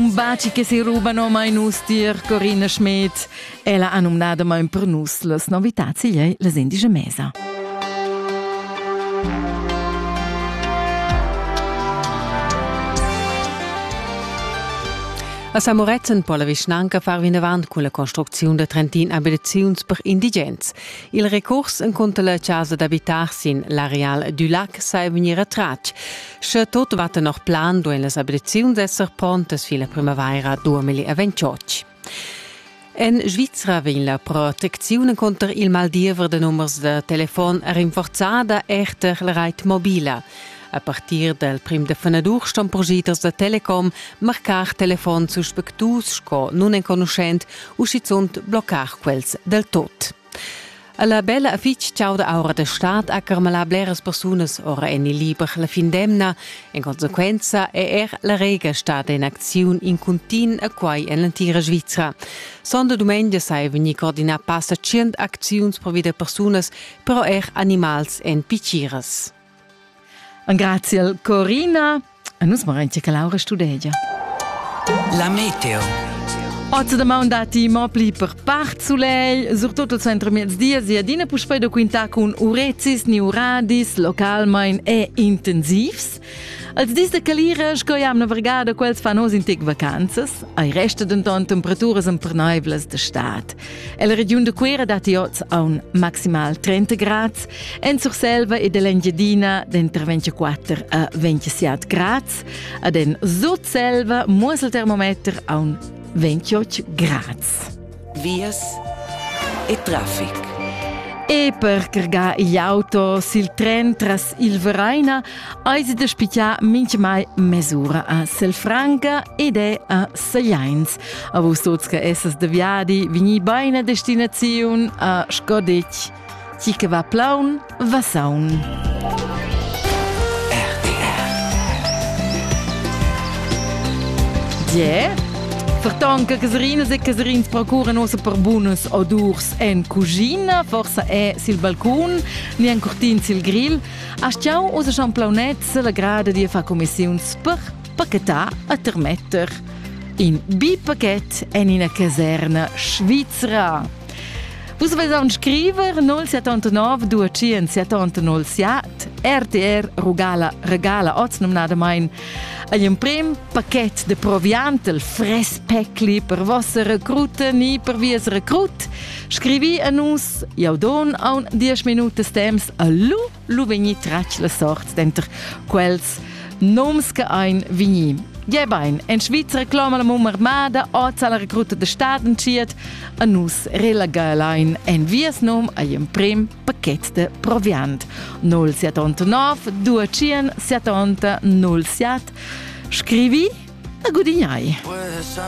Un baci che si rubano mai nus dir Corina Schmidt. Ella ha nominada mai per nus las novità sigliei les indice mesa. A Samoretzen po la vischnanca far vinavant cun la construcziun da trentin abitaziuns per indigens. Il recurs encunter la chasa d'abitar sin l'areal du lac sa è vegnir retratg. Sche tot va tenor plan, duein las abreziuns esser pontas fin la primavaira 2028. En Svizra vegn la protecziun conter il maldiever de numers de telefon rinforzada erter la reit mobila. A partir dal prim de fenadur ston progeters da telecom marcar telefon suspectus sco nunenconuschent u schizunt bloccar quels del tot. La bella e fitg chauda aura da stad ha carmalà bleras persunas ora en il liber la fin d'emna. En consequenza è er la Rega stada in acziun in cuntin a quai en l'entira Svizra. Sonda dumengia sai vegnir coordinà passa tschient acziuns per vida persunas, però er animals en piciras. Grazie Corina. Nus morain che Laura studegia. La meteo. Oz da maun dati mo pli per part soleil, surtut al centro mezdies e adina puspei da quintà cun urezis ni uradis localmain e intensivs. Als dis da calira, sco jam navergada, quels fan oz in tec vacanzas, ai resta denton temperaturas emperneivlas d'estate. La regiun da Cuira dat oz aun maximal 30 grads. En Surselva e dell'Engiadina dentro 24 a 27 grads. Ad en Sutselva muossel termometer aun 28 grads. Vias e traffic. E per cargar gli auto sil tren tras il Vereina eisi da spigiar minchmai mesura a Selfranca ed è a Segliains. A vus tuts che essas de viadi, vigni beina destinaziun a Skodich. Chi che va plaun, va saun. Yeah. Ferton che Caserinas e Caserins procuran ossa per bunas odurs en cucina, forsa è sil balcon, ni en curtin sil grill, a stiau ossa schon plaunets la grada di a far commissiuns per pachetà a termetter in bipaket en ina caserna svizra. Vus vesan scriver 079 277 07 RTR regala regala oz nomnadamain agl emprem paket de proviantel fres pecli per vossa recruta ni per vies recrut. Scrivi a nus, jau don aun 10 minutas temps a lu lu vegni tratg la sort denter quels noms che ein vegni. Gie bein, en Svizra cloma la mum armada oz alla recruta de stat entschiet a nus relegalein en vies nom agl emprim paket de proviant 079 200 70 07 scrivi a gudignai.